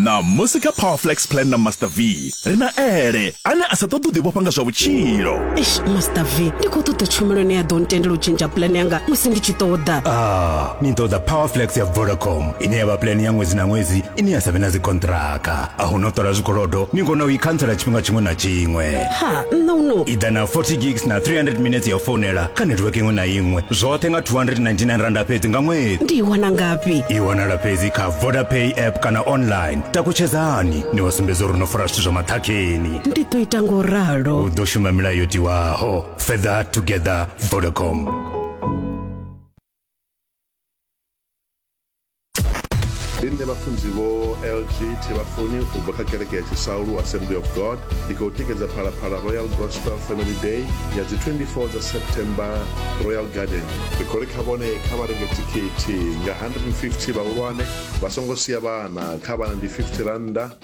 ṋamusi kha powerflex plan na master v ri na ele ane a sa ṱoḓi u ḓivhofha nga zwa vhutshilo master v ndi khou ṱoḓa tshumelo ine ya ḓo ntendela u tshentsha plan yanga musi ndi tshi ṱoḓa ah. ni ḓo ḓa powerflex ya vodacom ine ya vha pulani ya ṅwedzi na ṅwedzi ine ya sa vhe na dzikonṱiraka a hu no ṱola zwikolodo ni kona u i khantsela tshifhinga tshiṅwe na tshiṅwe ha nṋe uno i ḓa na 40 gigs na 300 minutes ya u founela kha netiweke iṅwe na iṅwe zwoṱhe nga 299 randa fhedzi nga ṅwedzi ndi i wana ngafhi i wanala fhedzi kha vodapay app kana online takutshedzani ni wa sumbedza uri no fara zwithu zwa maṱhakheni ndi ḓo ita ngo ralo u ḓo shuma milayo yo tiwaho further together vodacom ndi nṋe vhafunzi vho lg thevhafuni u bva kha kereke ya tshisaulu assembly of god ndi khou tikedza phalaphala royal gospel family day ya dzi 24 dza september royal garden ri khou ri kha vhone kha vha renge thikhithi nga 150 vhahulwane vha songo sia vhana kha vhana ndi 50 rannda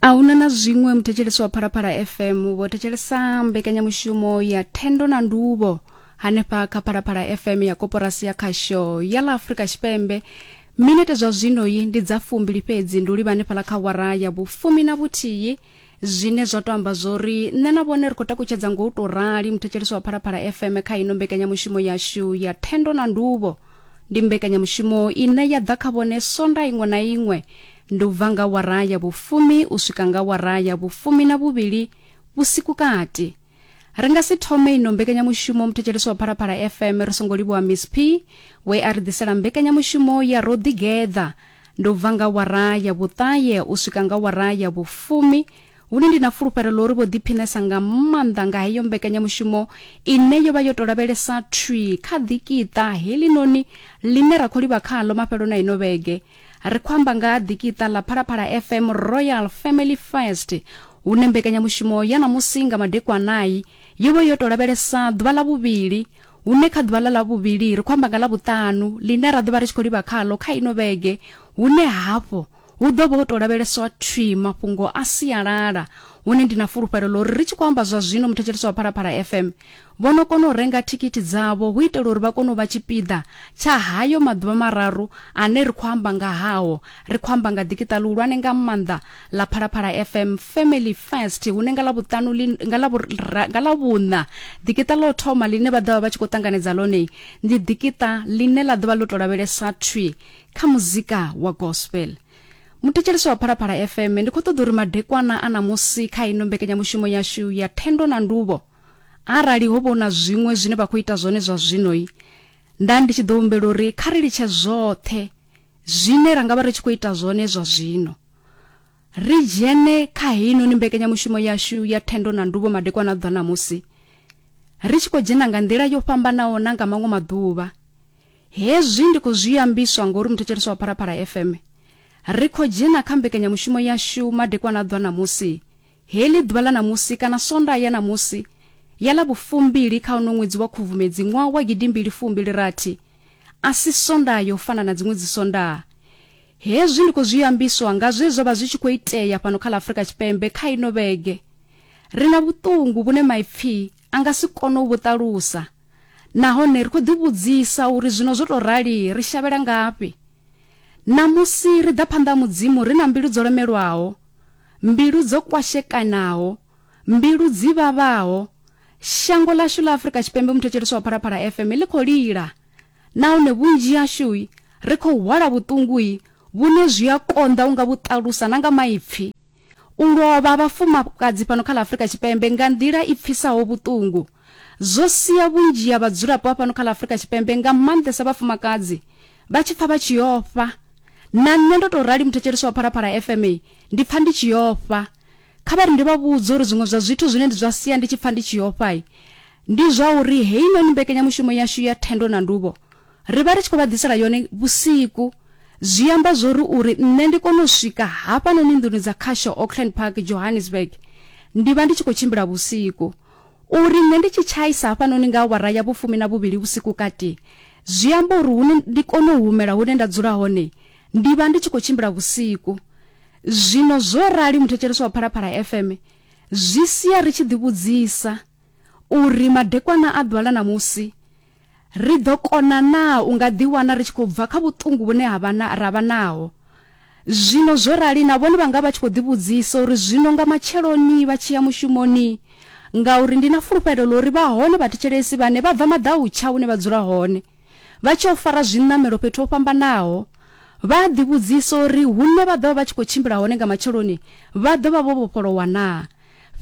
a huna na zwiṅwe muthetshelesi wa phalaphala fm vho thetshelesa mbekanyamushumo ya thendo na nduvho hanefha kha phalaphala fm ya koporasi ya khasho ya ḽa afurika tshipembe minete zwa zwino yi ndi dza fumbili fhedzi ndi u livha hanefhala kha wara ya vhufumi na vhuthihi zwine zwa to amba zwori nṋe na vhone ri khou takutshedza ngo u tou rali muthetshelesi wa phalaphala fm kha ino mbekanyamushumo yashu ya thendo na nduvho ndi mbekanyamushumo ine ya ḓa kha vhone sonda iṅwe na iṅwe Ndi u bva nga awara ya vhufumi u swika nga awara ya vhufumi na vhuvhili vhusiku kati. Ri nga si thome ino mbekanyamushumo muthetshelesi wa Phalaphala FM ri songo livhuwa Miss P we a ri ḓisela mbekanyamushumo ya ro ḓigeḓa. Ndi u bva nga awara ya vhuṱahe u swika nga awara ya vhufumi hune ndi na fulufhelo ḽa uri vho ḓiphinesa nga maanḓa nga heyo mbekanyamushumo ine yo vha yo tou lavhelesa thwi kha ḓikiṱa heḽinoni ḽine ra khou livha khaḽo mafheloni a ino vhege. ri khou amba nga ha ḓikiṱa ḽa phalaphala fm royal family first hune mbekanyamushumo ya ṋamusi nga madekwanai yo vha yo tou lavhelesa ḓuvha ḽa vhuvhili hune kha ḓuvha ḽa ḽa vhuvhili ri khou amba nga ḽa vhuṱanu ḽine ra ḓo vha ri tshi khou livha khalo kha ino vhege hune hafho hu ḓo vha ho tou lavheleswa thwi mafhungo a sialala hune ndi na fulufhelo ḽo ri ri tshi khou amba zwa zwino muthetshelesi wa phalaphala fm Vho no kona u renga thikhithi dzavho hu itela uri vha kone u vha tshipiḓa tsha hayo maḓuvha mararu ane ri khou amba nga hao. Ri khou amba nga ḓikiṱa ḽihulwane nga maanḓa ḽa Phalaphala FM Family Fest hune nga Ḽavhuṱanu ḽi, nga Ḽavhura, nga Ḽavhuṋa ḓikiṱa ḽa u thoma ḽine vha ḓo vha vha tshi khou ṱanganedza ḽone ndi ḓikiṱa ḽine ḽa ḓo vha ḽo tou lavhelesa thwi kha muzika wa gospel. Muthetshelesi wa Phalaphala FM, ndi khou ṱoḓa uri madekwana a ṋamusi kha ino mbekanyamushumo yashu ya Thendo na Nduvho, Arali ho vha hu na zwiṅwe zwine vha khou ita zwone zwa zwino, nda ndi tshi ḓo humbela uri kha ri litshe zwoṱhe zwine ra nga vha ri tshi khou ita zwone zwa zwino, ri dzhene kha heinoni mbekanyamushumo yashu ya thendo na nduvho madekwana a ḓwa ṋamusi, ri tshi khou dzhena nga nḓila yo fhambanaho na nga maṅwe maḓuvha. Hezwi ndi khou zwi ambiswa ngori muthetsheleswa wa Phalaphala FM, ri khou dzhena kha mbekanyamushumo yashu madekwana a ḓwa ṋamusi Heḽi ḓuvha ḽa ṋamusi kana Sondaha ya ṋamusi ya ḽa vhufumbili kha uno ṅwedzi wa Khubvumedzi ṅwaha wa gidimbili fumbili rathi a si Sondaha ya u fana na dziṅwe dzisondaha. Hezwi ndi khou zwi ambiswa nga zwe zwa vha zwi tshi khou itea fhano kha ḽa Afrika Tshipembe kha ino vhege. Ri na vhuṱungu vhune maipfi a nga si kone u vhu ṱalusa nahone ri khou ḓivhudzisa uri zwino zwo tou rali ri shavhela ngafhi. Ṋamusi ri ḓa phanḓa ha Mudzimu ri na mbilu dzo lemelwaho. mbilu dzo kwashekanaho, mbilu dzi vhavhaho, shango ḽashu ḽa Afrika Tshipembe muthetshelesi wa Phalaphala FM ḽi khou lila nahone vhunzhi hashu ri khou hwala vhuṱungu vhune zwi a konḓa unga vhu ṱalusa na nga maipfi. U lovha ha vhafumakadzi fhano kha ḽa Afrika Tshipembe nga nḓila i pfisaho vhuṱungu zwo sia vhunzhi ha vhadzulapo a fhano kha ḽa Afrika Tshipembe nga maanḓesa vhafumakadzi vha tshi pfa vha tshi ofha. Na nṋe ndo tou rali muthetshelesi wa Phalaphala FM ndi pfa ndi tshi ofha. Kha vha ri ndi vha vhudze uri zwiṅwe zwa zwithu zwine ndi zwa sia ndi tshi pfa ndi tshi ofha ndi zwa uri heinoni mbekanyamushumo yashu ya thendo na nduvho ri vha ri tshi khou vha ḓisela yone vhusiku zwi amba zwo ri uri nṋe ndi kone u swika hafhanoni nḓuni dza khasho Auckland Park Johannesburg ndi vha ndi tshi khou tshimbila vhusiku U ri, Nṋe ndi tshi tshaisa hafhanoni nga awara ya vhufumi na vhuvhili vhusiku kati, zwi amba uri hune ndi kone u humela hune nda dzula hone, ndi vha ndi tshi khou tshimbila vhusiku. Zwino zwo rali muthetshelesi wa Phalaphala FM zwi sia ri tshi ḓivhudzisa uri madekwana a ḓuvha ḽa ṋamusi, Ri ḓo kona naa u nga ḓiwana ri tshi khou bva kha vhuṱungu vhune ha vha na, ra vha naho zwino? Zwo rali, na vhone vha nga vha tshi khou ḓivhudzisa uri, Zwino nga matsheloni vha tshi ya mushumoni? Ngauri ndi na fulufhelo ḽa uri vha hone vhathetshelesi vhane vha bva maḓautsha hune vha dzula hone, vha tshi yo fara zwiṋamelo fhethu ho fhambanaho. Vha a ḓivhudzisa uri hune vha ḓo vha vha tshi khou tshimbila hone nga matsheloni vha ḓo vha vho vhofholowa naa?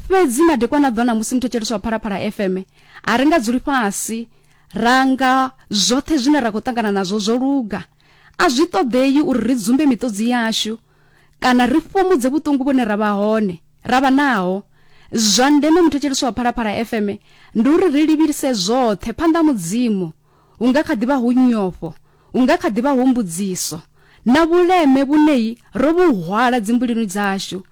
Fhedzi madekwana a ḓona musi muthetshelesi wa Phalaphala FM a ri nga dzuli fhasi ra nga zwoṱhe zwine ra khou ṱangana nazwo zwo luga a zwi ṱoḓei uri ri dzumbe miṱodzi yashu kana ri fhumudze vhuṱungu vhune ra vha hone ra vha naho zwa ndeme muthetshelesi wa phalaphala fm ndi uri ri livhise zwoṱhe phanḓa mudzimu hu nga kha ḓi vha hu nyofho, hu nga kha ḓi vha hu mbudziso na vhuleme vhunei ro vhu hwala dzimbulinu dzashu.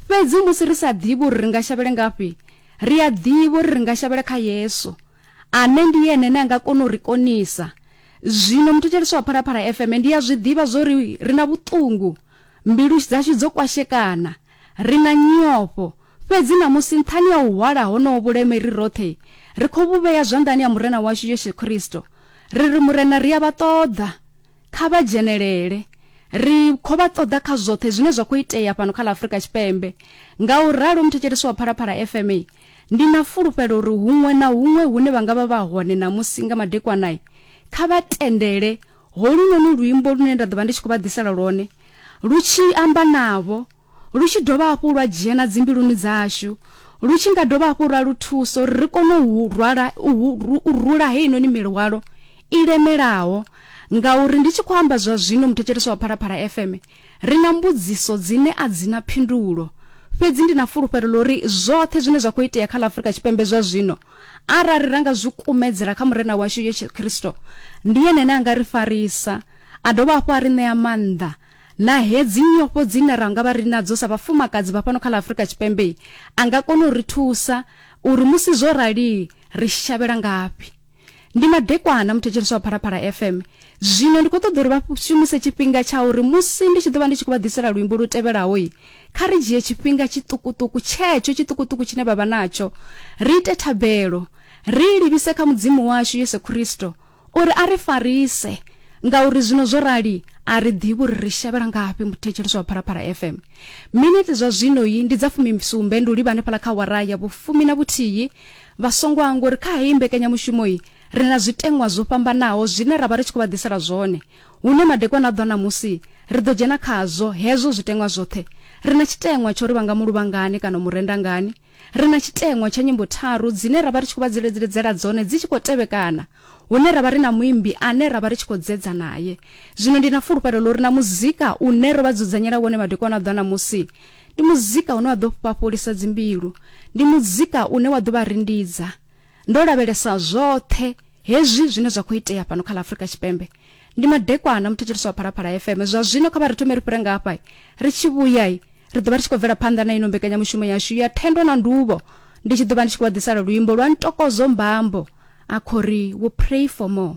Fhedzi musi ri sa ḓivhi uri ri nga shavhele ngafhi, ri a ḓivha uri ri nga shavhela kha Yesu, ane ndi ene ane a nga kona u ri konisa. Zwino muthetshelesi wa Phalaphala FM ndi a zwi ḓivha zwo ri ri na vhuṱungu, mbilu dzashu dzo kwashekana, Ri na nyofho, fhedzi ṋamusi nṱhani ha u hwala honoho vhuleme ri roṱhe, ri khou vhu vhea zwanḓani ha Murena washu Yesu Kristo. Ri ri, Murena, ri a vha ṱoḓa. Kha vha dzhenelele. Ri khou vha ṱoḓa kha zwoṱhe zwine zwa khou itea fhano kha ḽa Afurika Tshipembe. Ngauralo, muthetshelesi wa Phalaphala FM, ndi na fulufhelo uri huṅwe na huṅwe hune vha nga vha vha hone ṋamusi nga madekwana, kha vha tendele Holunoni luimbo lune nda ḓo vha ndi tshi khou vha ḓisela lwone lu tshi amba navho, lu tshi dovha hafhu lwa dzhena dzimbiluni dzashu, lu tshi nga dovha hafhu lwa lu thusa uri ri kone u rwala, u rula heinoni milwalo i lemelaho. Ngauri ndi tshi khou amba zwa zwino, muthetshelesi wa Phalaphala FM, Ri na mbudziso dzine a dzi na phindulo, fhedzi ndi na fulufhelo ḽa uri zwoṱhe zwine zwa khou itea kha ḽa Afrika Tshipembe zwa zwino, arali ra nga zwi kumedzela kha Murena washu Yesu Kristo, ndi Ene ane a nga ri farisa, a dovha hafhu a ri ṋea maanḓa. Na hedzi nyofho dzine ra nga vha ri nadzo sa vhafumakadzi vha fhano kha ḽa Afrika Tshipembe, a nga kona u ri thusa uri musi zwo rali ri shavhela ngafhi. ndi madekwana muthetshelesi wa phalaphala fm zwino ndi khou ṱoḓa uri vha shumise tshifhinga tsha uri musi ndi tshi ḓo vha ndi tshi khou vha ḓisela luimbo lu tevhelaho i kha ri dzhie tshifhinga tshiṱukuṱuku tshetsho tshiṱukuṱuku tshine vha vha natsho ri ite thabelo ri livhise kha mudzimu washu yesu khristo uri a ri farise ngauri zwino zwo rali a ri ḓivhi uri ri shavhela ngafhi muthetshelesi wa phalaphala fm miniti zwa zwino yi ndi dza fumisumbe ndi u livha hanefhala kha wara ya vhufumi na vhuthihi Vha songo hangwa uri kha heyi mbekanyamushumo iyi ri na zwiteṅwa zwo fhambanaho zwine ra vha ri tshi khou vha ḓisela zwone. Hune madekwana a ḓo ṋamusi, ri ḓo dzhena khazwo hezwo zwiteṅwa zwoṱhe. Ri na tshiteṅwa tsha uri vha nga mu luvha ngani kana u mu renda ngani. Ri na tshiteṅwa tsha nyimbo tharu dzine ra vha ri tshi khou vha dziledziledzela dzone dzi tshi khou tevhekana, hune ra vha ri na muimbi ane ra vha ri tshi khou dzedza nae. Zwino ndi na fulufhelo ḽa uri na muzika une ro vha dzudzanyela wone madekwana a ḓo ṋamusi, Ndi muzika une wa ḓo fhafholisa dzimbilu. Ndi muzika une wa ḓo vha rindidza. Ndo lavhelesa zwoṱhe hezwi zwine zwa khou itea fhano kha ḽa Afrika Tshipembe. Ndi Madekwana, muthetshelesi wa Phalaphala FM. Zwa zwino kha vha ri thome ri fhire nga hafha. Ri tshi vhuya, ri ḓo vha ri tshi khou bvela phanḓa na ino mbekanyamushumo yashu ya Thendo na Nduvho. Ndi tshi ḓo vha ndi tshi khou vha ḓisela luimbo lwa Ntokozo Mbambo a khou ri, We'll Pray For More.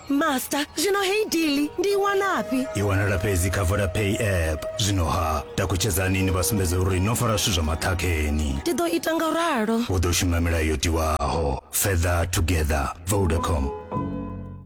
master zwino heyi dili ndi i wanafhi i wanala fhedzi kha vodapay app zwino ha takutshedzani ni vha sumbedza uri no fara zwithu zwa maṱhakheni ndi ḓo ita nga u ralo u ḓo shuma milayo yo tiwaho further together vodacom